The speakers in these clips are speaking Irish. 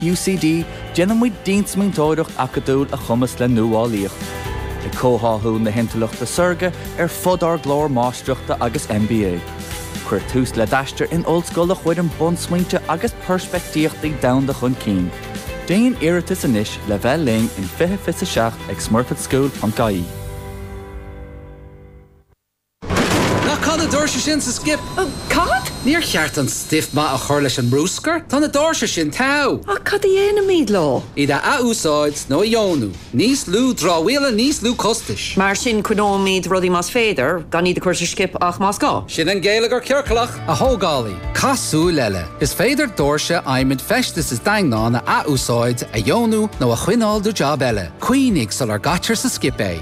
UCD, déanann muid diansmaointeoireacht acadúil a chumasc le nuálaíocht, ag comhtháthú na hintleachta saorga ar fud ár gclár máistreachta agus MBA. Cuir tús le d'aistear in ollscoil a chuireann bunsmaointe agus peirspictíochtaí domhanda chun cinn. Déan iarratas anois le bheith linn in 2027 ag smurfit-school.ie. Nach caith na doirse sin sa skip? Cad? Níor cheart an stuif maith a chur leis an mbrúscar? Tá na doirse sin togha! Ach cad a dhéanfaimid leo? Iad a athúsáid nó a dheonú. Níos lú dramhaíola, níos lú costais. Mar sin, coinneoimid rudaí más féidir, gan iad a chur sa skip ach más gá. Sin an geilleagar ciorclach! A thógálaí, cas siar eile. Is féidir doirse adhmaid feistis is daingneáin a athúsáid, a dheonú nó a choinneáil do jab eile. Cuimhnigh sular gcaitear sa skip é.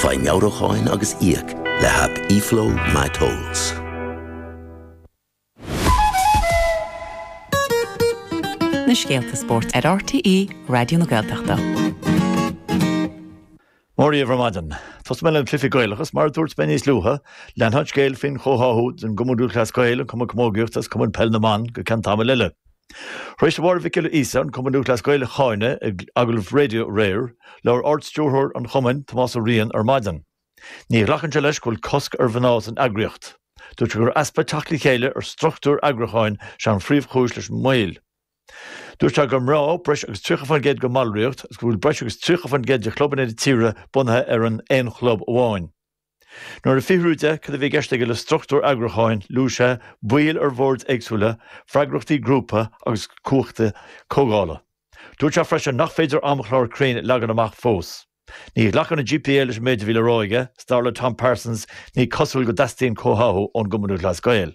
Faigh meabhrúcháin agus íoc le haip eFlow My Tolls. Na scéalta spóirt ar RTÉ Raidió na Gaeltachta. Mora dhíbh ar maidin. Tosóidh mé leis na cluichí Gaelacha is. Mar a dúirt mé níos luaithe, leanfaidh an scéal faoin chomhtháthú den Chumann Lúthchleas Gael, an Cumann Camógaíochta agus Cumann Peil na mBan go ceann tamaill eile. Tar éis do Mháire Mhic Giolla Íosa, an Cumann Lúthchleas Gael a cháineadh ag agallamh raidió aréir, labhair Ard-Stiúrthóir an Chumainn, Tomás Ó Riain, ar maidin. Ní ghlacann sé leis go bhfuil cosc ar mhná san eagraíocht. Dúirt sé gur easpa teacht le chéile ar struchtúir eagrúcháin is ea an phríomhchúis leis an moill. Dúirt sé gur mná breis agus 30% den bhallraíocht agus go bhfuil breis agus 30% de chlubanna na tíre bunaithe ar an aon chlub amháin. Nuair a fiafraíodh de cad a bhí i gceist aige le struchtúr eagrúcháin, luaigh sé, baill ar bhoird éagsúla, freagrachtaí grúpa agus cumhachtaí comhdhála. Dúirt sé freisin nach féidir amchlár cruinn a leagan amach fós. Ní ghlacann an GPA leis an méid a bhí le rá aige, 's dar le Tom Parsons ní cosúil go dteastaíonn comhtháthú ón gCumann Lúthchleas Gael.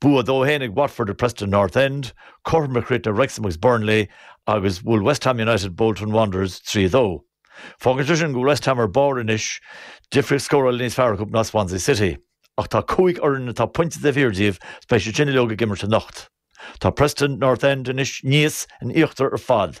Bua dó a haon ag Watford ar Preston North End, cothrom a chríochnaigh Wrexham agus Burnley agus bhuail West Ham United Bolton Wanderers 3 2. Fágann sé sin go bhfuil West Ham ar barr anois, difríocht scórála níos fearr acu ná Swansea City. Ach tá cúig fhoireann atá pointe taobh thiar díobh agus beidh siad sin uilig ag imirt anocht. Tá Preston North End anois níos in íochtar ar fad.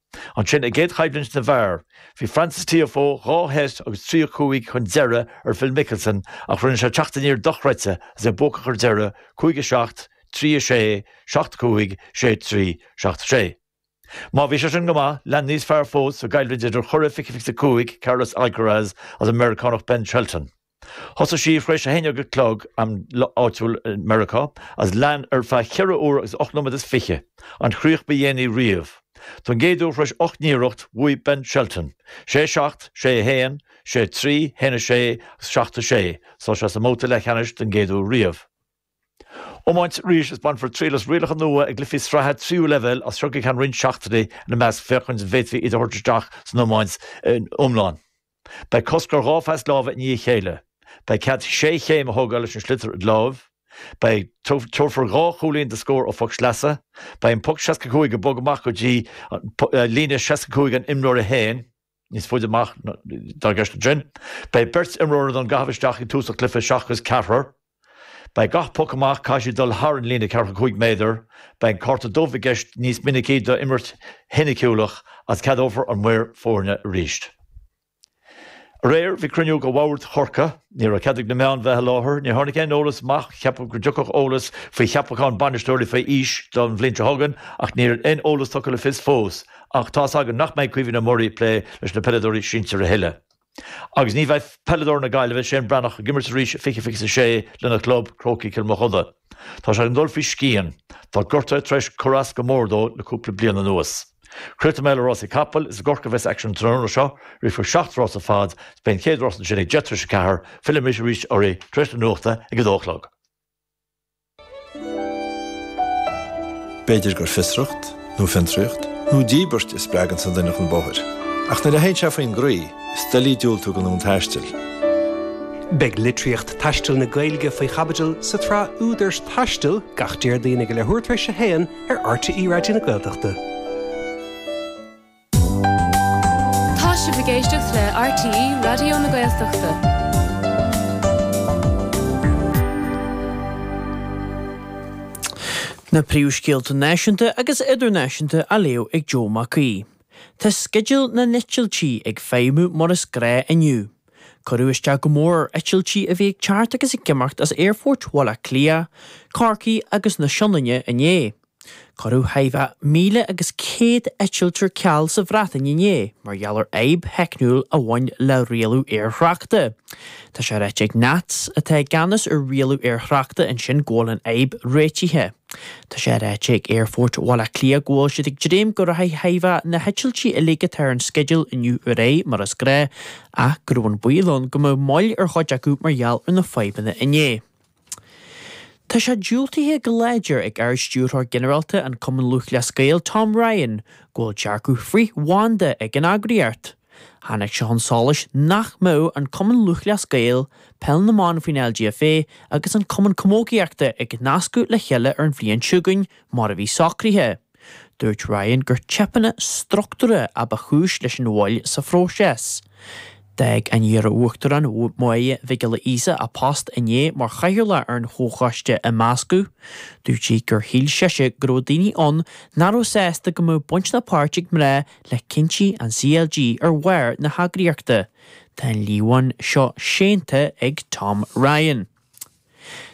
Ansin, i gcéad choimhlint na bhfear, bhí Frances Tiafoe dhá set agus trí a cúig chun deiridh ar Phil Mickelson ach rinne sé teacht aniar dochreidte is é buacach ar deireadh, cúig a seacht, trí a sé, seacht a cúig, sé a trí, seacht a sé. Má bhí sé sin go maith, lean níos fearr fós sa gcoimhlint idir churadh fiche fiche a cúig Carlos Alcaraz agus an Meiriceánach Ben Shelton. Thosaigh sí tar éis a haon déag a chlog, am áitiúil i Meiriceá, agus lean ar feadh ceithre uair agus ocht nóiméad is fiche, an chríoch ba dhéanaí riamh. Don gcéad uair tar éis ocht n-iarracht, bhuaigh Ben Shelton, sé a seacht, sé a haon, sé a trí, haon a sé agus seacht a sé, so beidh sé sa mbabhta leathcheannais don gcéad uair riamh. Iomáint arís, is bainfear triail as rialacha nua i gcluichí sraithe tríú leibhéal as seo go ceann roinnt seachtainí, ina measc féachaint an bhféadfaí iad a thabhairt isteach san iomáint iomlán. Beidh cosc ar dhá phas láimhe i ndiaidh a chéile. Beidh cead sé chéim a thógáil leis an sliotar id láimh. Beidh, tabharfar dhá chúilín do scór ó phoc sleasa. Beidh an poc 65 ag bogadh amach go dtí líne 65 an imreora féin, níos faide amach atá i gceist ansin. Beidh beirt imreoir don gcaitheamh isteach ag tús an chluiche seachas ceathrar. Beidh gach poc amach caithfidh siad dul thar an líne ceathracha cúig méadar, beidh an cárta dubh i gceist níos minicí do imirt shoiniciúlach agus ceadófar an maor foirne arís. Aréir bhí cruinniú de Bhord Chorcaí, ní raibh cead ag na meáin bheith i láthair, ní tháinig aon eolas amach, ceapadh go dtiocfadh eolas faoi cheapachán bainisteoirí faoi aois don bhliain seo chugainn ach níl aon eolas tugtha le fios fós, ach tá's againn nach mbeidh Caoimhín Ó Muirí ag plé leis na peileadóirí sinsir a thuilleadh. Agus ní bheidh peileadóir na Gaillimhe, Séan Breathnach, ag imirt arís i 2026 lena chlub, Crócaigh Chill Mochuda. Tá sé ag dul faoi scian. Tá gortú tar éis cur as go mór dó le cúpla bliain anuas. Críochnóidh mé le rásaí capaill, is i gCorcaigh a bheas aicsean an tráthnóna seo. Rithfear seacht rás ar fad, is beidh an chéad rás ansin ag deich tar éis a ceathair. Fillfidh mise arís oraibh tar éis na nuachta ag a dó a chlog. B'fhéidir gur fiosracht, nó fiontraíocht, nó díbirt a spreaganns an duine chun bóthair, ach nuair a théann sé faoin gcroí, is doiligh diúltú don fhonn taistil. Beidh litríocht taistil na Gaeilge faoi chaibidil sa tsraith Údair Taistil gach Déardaoin ag a leathuair tar éis a haon ar RTÉ Raidió na Gaeltachta. Tá sibh ag éisteacht le RTÉ Raidió na Gaeltachta. Na príomhscéalta náisiúnta agus idirnáisiúnta á léamh ag Joe Mac Aoidh. Tá sceideal na n-eitiltí ag feidhmiú mar is gnáth inniu. Cuireadh isteach go mór ar eitiltí a bhí ag teacht agus ag imeacht as aerfoirt Bhaile Átha Cliath, Chorcaí agus na Sionainne inné. Cuireadh chóir a bheith 1,000 agus 100 eitilt ar ceal sa Bhreatain inné mar gheall ar fhadhb theicniúil a bhain le rialú aerthráchta. Tá sé ráite ag NATS, atá i gceannas ar rialú aerthráchta ansin, go bhfuil an fhadhb réitithe. Tá sé ráite ag Aerfort Bhaile Átha Cliath go bhfuil siad ag dréim go rachaidh chóir a bheith na heitiltí uilig atá ar an sceideal inniu ar aghaidh mar is gnách ach go raibh an baol ann go mbeadh moill ar chuid acu mar gheall ar na fadhbanna inné. Tá sé diúltaithe go láidir ag Ard-Stiúrthóir Ginearálta an Chumainn Lúthchleas Gael, Tom Ryan, go bhfuil dearcadh frith-bhanda ag an eagraíocht. Tháinig sé chun solais nach mbeadh an Cumann Lúthchleas Gael, Peil na mBan faoin LGFA agus an Cumann Camógaíochta ag nascadh le chéile ar an bhliain seo chugainn mar a bhí socraithe. Dúirt Ryan gur teipeanna struchtúir a ba chúis leis an mhoill sa phróiseas. D'fhág an iar-Uachtarán Máire Mhic Giolla Íosa a post inné mar chathaoirleach ar an chomhchoiste imeasctha. Dúirt sí gur shíl sise go raibh daoine ann nach raibh sásta go mbeadh baint ná páirt ag mná le cinntí an CLG ar bharr na heagraíochta. Tá an líomhain seo séanta ag Tom Ryan.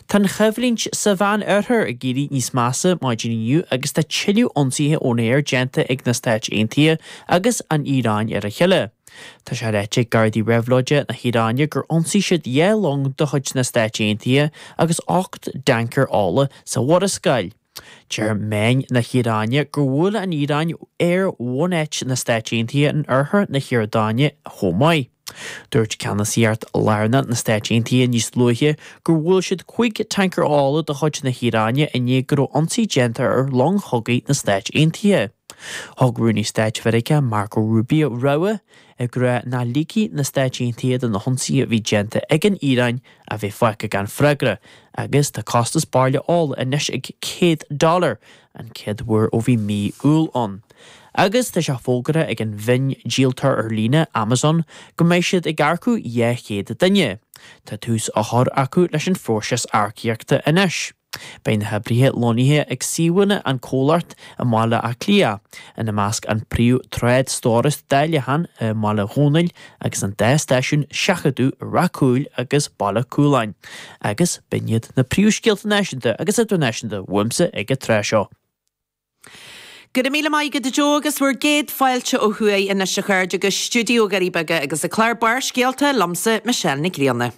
Tá an choimhlint sa Mheánoirthear ag éirí níos measa maidin inniu agus tá tuilleadh ionsaithe ón aer déanta ag na Stáit Aontaithe agus an Iaráin ar a chéile. Tá sé ráite ag Gardaí Réabhlóide na hIaráine gur ionsaigh siad dhá long de chuid na Stáit Aontaithe agus ocht dtancaer ola sa Mhurascaill. Deir meáin na hIaráine gur bhuail an Iaráin aerbhunáit na Stáit Aontaithe in oirthear na hIordáine chomh maith. Dúirt Ceannasaíocht Lárnach na Stáit Aontaithe níos luaithe gur bhuail siad cúig tancaer ola de chuid na hIaráine i ndiaidh go raibh ionsaí déanta ar long chogaidh na Stáit Aontaithe. Thug Rúnaí Stáit Mheiriceá Marco Rubio rabhadh, ag rá nach ligfidh na Stáit Aontaithe don ionsaí a bhí déanta ag an Iaráin a bheith fágtha gan freagra agus tá costas bairille ola anois ag 100 dollar, an chéad uair ó bhí mí Iúil ann. Agus tá sé fógartha ag an mhiondíoltóir ar líne, Amazon, go mbeidh siad ag earcú 200 duine. Tá tús á chur acu leis an phróiseas earcaíochta anois. Beidh na hoibrithe lonnaithe ag suíomhanna an chomhlachta i mBaile Átha Cliath, ina measc an príomh-thrádstóras dáileacháin i mBaile Dhónaill agus an dá stáisiún seachadta i Rath Cúil agus Baile Cúláin, agus b'in iad na príomhscéalta náisiúnta agus idirnáisiúnta uaimse ag an tráth seo. Go raibh míle maith agat a Joe agus bhur gcéad fáilte ó thuaidh anois a chairde go Stiúideo Dhoirí Beaga agus an clár Barrscéalta liomsa Michelle Nic Grianna.